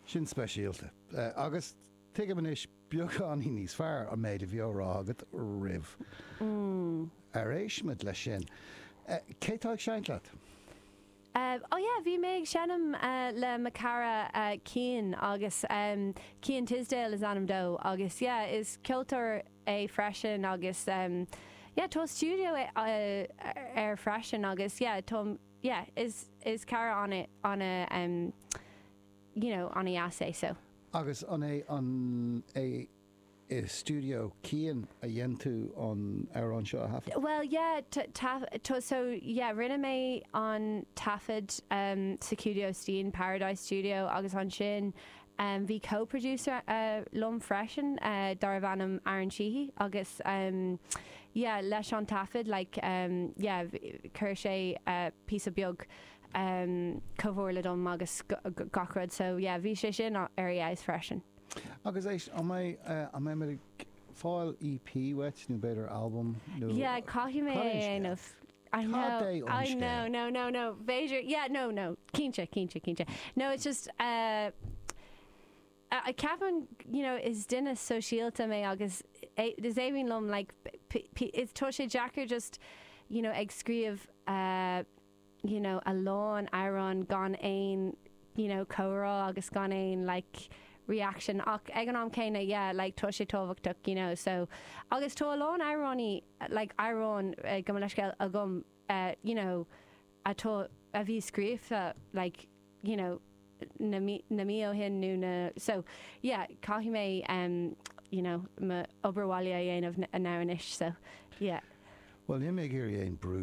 Sin speisialta. Agus tuigim anois beagáinín níos fearr an méid a bhí á rá agat roimh ar éisteamar leis sin. Cé tá ag seinnt leat? Ó yeah, bhí mé ag seinm le mo chara Cian agus Cian Tisdale is ainm dó agus yeah, is ceoltóir é freisin agus yeah tá stiúideo aige freisin agus yeah, táim. yeah is is cara ana ana em you know ana dheas é so. Agus an é an é i Studio Cian a dhein tú an amhrán seo a thaifead? Bhuel yeah ta ta ta so yeah rinne mé an taifead em sa Studio Cian Paradise Studio agus ansin Bhí co-producer liom freisin darbh ainm Aaron Sheehy agus yeah leis an taifead like yeah chuir sé píosa beag comhairle dom agus gach rud so yeah bhí sé sin ar fheabhas freisin. Agus éist, an mbeidh, an mbeimid ag fáil EP uait nó b'fhéidir albam nó? Yeah caithfidh mé é a dhéanamh. I Tá know, Dé ón I know, scéal. no, no, no, b'fhéidir, yeah, no, no, cinnte, cinnte, cinnte. No, it's just, uh, uh, ceapaim, you know, is duine sóisialta mé agus é- is aoibhinn liom, like, p- p- is tá sé deacair just, you know, ag scríobh, uh, you know, a lán amhrán gan aon you know, comhrá agus gan aon like reaction ach ag an am céanna yeah like tá sé tábhachtach, you know, so agus tá a lán amhránaí like amhrán gabh mo leithscéal agam you know atá a bhí scríofa like you know na mí na mí ó shin nó na so yeah caithfidh mé um you know m'obair bhaile a dhéanamh now anois so yeah. Bhuel, níl mé ag iarraidh aon brú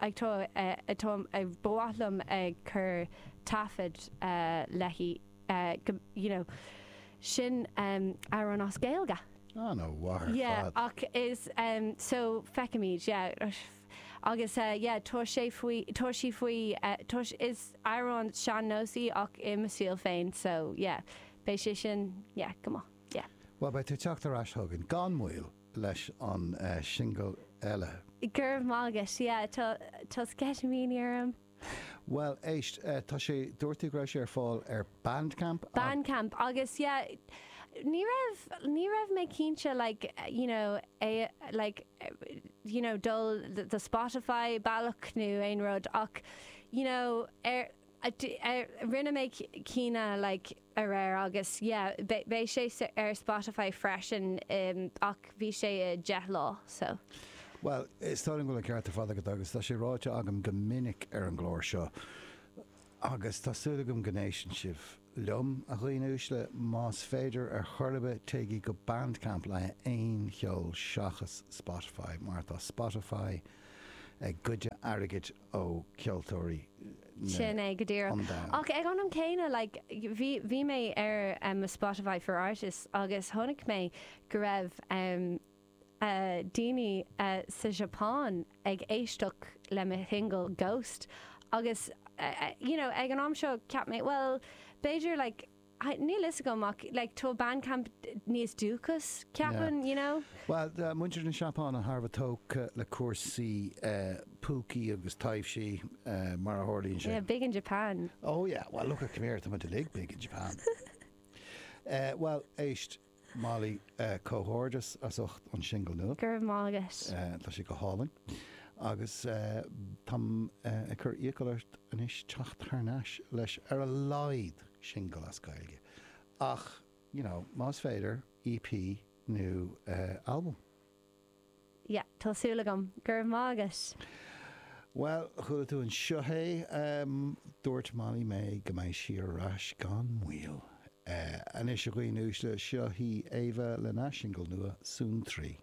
Ba mhaith liom ag cur taifead léi go, you know, sin amhrán as Gaeilge. Ah, no, mhaith ar fad. Ach is, so, feicimid, yeah. Agus, yeah, tá sé faoi, tá sí faoi, tá, is amhrán sean-nós í ach i mo stíl féin, so, yeah. Beidh sé sin, yeah, go maith, yeah. Bhuel, beidh tú ag teacht ar ais chugainn gan mhoill. leis an singil eile. Go raibh maith agat. Yeah, tá, tá sceitimíní orm. Bhuel, éist, tá sé, dúirt tú go raibh sé ar fáil ar Bandcamp? Bandcamp agus yeah, ní raibh, ní raibh mé cinnte like, you know, é like, you know, dul the Spotify, bealach nó aon rud ach, you know, ar, Rinne mé cinnte like aréir agus yeah beidh sé ar Spotify freisin ach bhí sé 10 lá so. Bhuel, is dóigh liom go bhfuil an ceart ar fad agat agus tá sé ráite agam go minic ar an gclár seo agus tá súil agam go n-éisteann sibh liom, a dhaoine uaisle, más féidir ar chor ar bith téigí go Bandcamp le haon cheol seachas Spotify mar tá Spotify ag goid airgid ó cheoltóirí na Sin é, go díreach. an domhain. Ach ag an am céanna, like, bhí, bhí mé ar em, mo Spotify for Artists agus chonaic mé go raibh em, eh, daoine eh, sa tSeapáin ag éisteacht le mo shingil Ghost agus eh, eh, you know, ag an am seo, cheap mé, bhuel, b'fhéidir, like, Níl a fhios agam ach like tá Bandcamp níos dúchas, ceapaim, you know? Bhuel, tá muintir na Seapáine thar a bheith tógtha le cúrsaí púcaí agus taibhsí, mar a tharlaíonn sé. Yeah, big in Japan. Oh yeah, well lookit c'mere, táimid uilig big in Japan. Bhuel, éist. Molly, Comhghairdeas as ucht an singil nua. Go raibh maith agat. Tá sé go hálainn agus táim ag cur iachall ort anois teacht thar n-ais leis ar a laghad singil as Gaeilge ach, you know, más féidir, EP nó albam. yeah tá súil agam. Go raibh maith agat! Bhuel, chuala tú anseo é, dúirt Molly May go mbeidh sí ar ais gan mhoill. Anois a dhaoine uaisle, seo hí Éabha lena singil nua, Suantraí.